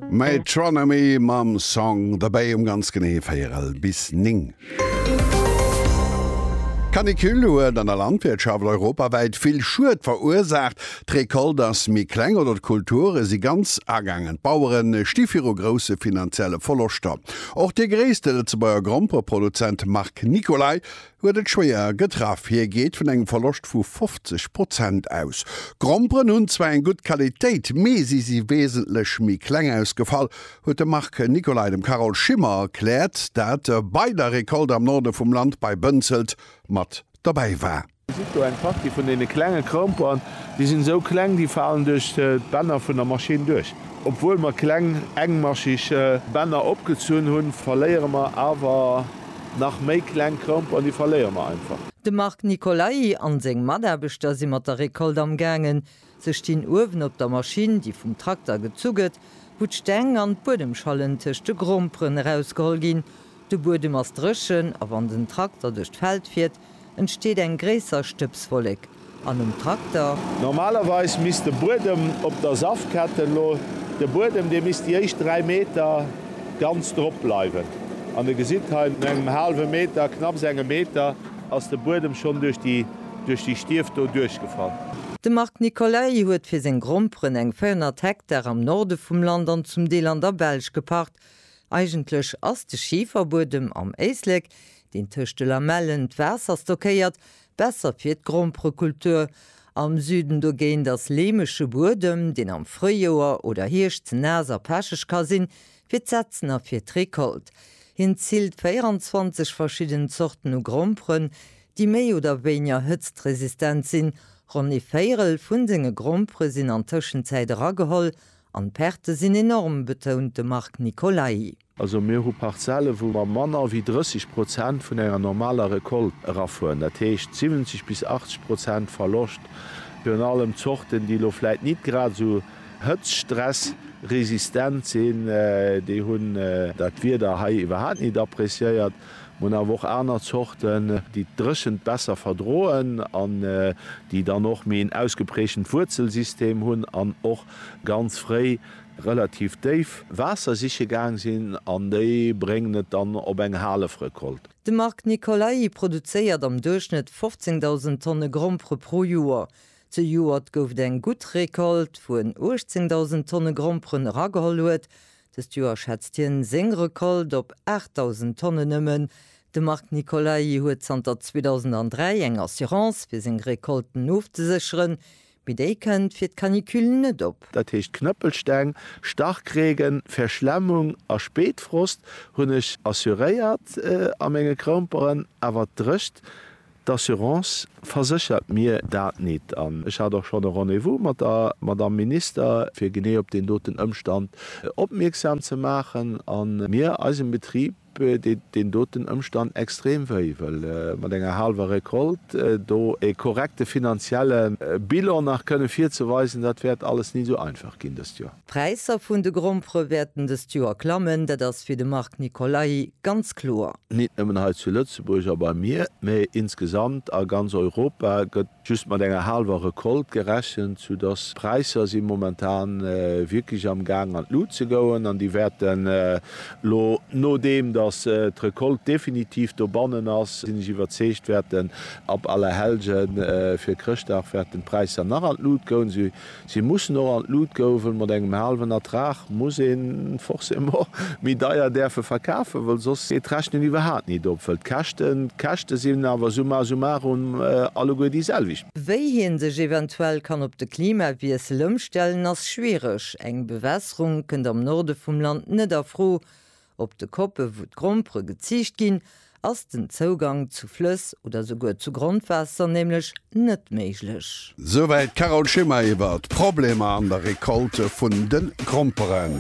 Metronomy mam Song The Bay um ganz genee 4 bis 9. D'Canicule huet an der Landwirtschaft europawäit vill Schued verursaacht. D'Recolte ass méi kleng oder d'Kulture si ganz agaangen. D'Bauere sti viru grousse finanzielle Verloschter. Och de gréisste Lëtzebuerger Grompeproduzent Marc Nicolay huet et schwéier getraff. Hie geet vun engem Verloscht vu 50 Prozent aus. D'Gromperen hunn zwar eng gutt Qualitéit, mee si si weesentlech méi kleng ausgefall, huet de Marc Nicolay dem Carole Schimmer erkläert, dat bei der Recolte am Norde vum Land bei Bënzelt mat dobäi war. Dir gesitt do eng Partie vun deene klenge Gromperen. Déi sinn esou kleng, déi falen duerch d'Bänner vun der Maschinn duerch. Obwuel mer kleng, engmascheg Bänner opgezunn hunn, verléiere mer awer Nach méi kleng Kromp an déi verléiere mer einfach. De Marc Nicolai an seng Mataarbechter si mat der Récolte am gaangen. Se stinn uewen op der Maschinn, déi vum Trakter gezu gëtt, wou d'Steng an d'Buedemschallen tëscht de Gromperen erausgeholl ginn. De Buedem ass dréchen a wann den Trakter duerch d'Feld fiert, entsteet eng gréisser Stëbswollek an um Trakter. Normalerweis misst de Buedem op der Safkette elo, de Buedem dee misst déi éischt 3 Meter ganz drop bleiwen an der gesitt hei no engem haalwe Meter, knapps engem Meter, ass de Buedem schonn duerch déi duerch déi Stief do duerchgefall. De Marc Nicolay huet fir seng Gromperen eng 400 Hektar am Norde vum Land an zum Deel an der Belsch gepacht. Eigentlech ass de Schiferbuedem am Éislek deen tëscht de Lamellen d'Waasser stockéiert, besser fir d'Gromperekultur. Am Süden dogéint ass leemege Buedem, deen am Fréijoer oder Hierscht ze naass a pecheg ka sinn, fir d'Setzen a fir d'Recolt. Hien ziilt 24 verschidden Zorten u Gromperen, déi méi oder wéinger hëtztresistent sinn. Ronn ee Véierel vu senge Grompere sinn an Tëschenzäit erageholl an d'Perte sinn enorm, betount de Marc Nicolai. Also mir hu Parzelle wou mer manner wéi 30 Prozent vun enger normaler Recolte erafueren, dat heescht 70 bis 80 Prozent Verloscht, virun allem Zorten déi elo vläit nit grad esou hëtztstressresistent sinn, déi hunn dat Wieder hei iwwerhaapt nit appreciéiert. Mer hunn awer och aner Zorten déi d'Dréchent besser verdroen an déi dann och méi en ausgeprägtent Wuerzelsystem hunn an och ganz fréi relativ déif Waasser siche gaang sinn an déi bréngen et dann op eng Halefrecolte. De Marc Nicolai produzéiert am Duerchschnëtt 15.000 Tonne Grompere pro Joer. Zejoert gouf et eng gutt Recolte, wou en 18.000 Tonne Gromperen erageholl huet. Dëst Joer schätzt hien seng Recolte op 8.000 Tonnen nëmmen. De Marc Nicolai huet zanter 2003 eng Assurance, fir seng Recolten ofzesécheren. Mee déi kënnt fir d'Canicule net op. Dat heescht Knëppelsteng, Starkregen, Verschlemmung a Spéitfrost hunn ech assuréiert a menge Kroumperen. Awer d'Drëcht d'Assurance verséchert mir dat nit. An ech hat och schonn e Rendez-vous mat der Madamm Minister, fir genee op deen doten Ëmstand opmierksam ze maachen a mir eisem Betrib deet deen doten Ëmstand extrem wéi, wëll mat enger haalwer Recolte do ee korrekte finanzielle Bilan nach kënne virzeweisen, dat wäert alles ni esou einfach ginn dëst Joer. D'Präisser vun de Grompere wäerten dëst Joer klammen, dat ass fir de Marc Nicolai ganz kloer. Nit nëmmen hei zu Lëtzebuerg a bei mir, mee insgesamt a ganz Europa gëtt Just mat enger haalwer Recolte gerechent, sou dass d'Präisser si momentan wierklech am Gaang an d'Lut ze goen an déi wäerten elo, nodeem dass d'Recolte definitiv dobannen ass, sinn ech iwwerzeegt, wäerten ab Allerhellgen fir Chrëschtdag wäerten d'Präisser nach an d'Lut goen. Si mussen och an d'Lut gouwen. Mat engem haalwen Ertrag muss een forcément méi deier däerfe verkafen, well soss geet d'Rechnen iwwerhaat nit op, well d'Käschten, d'Käschte sinn awer summa summarum alleguer déi selwecht. Wéi hien sech eventuell kann op de Klimawiessel ëmstellen ass schwiereg. Eng Bewässerung kënnt am Norde vum Land net a Fro, Op de Koppe wou d'Grompere geziicht ginn, ass den Zougang zu Flëss oder souguer zu Grondwaasser nämlech net méiglech. Souwäit d'Carole Schimmer iwwert d'Problemer an der Recolte vun de Gromperen.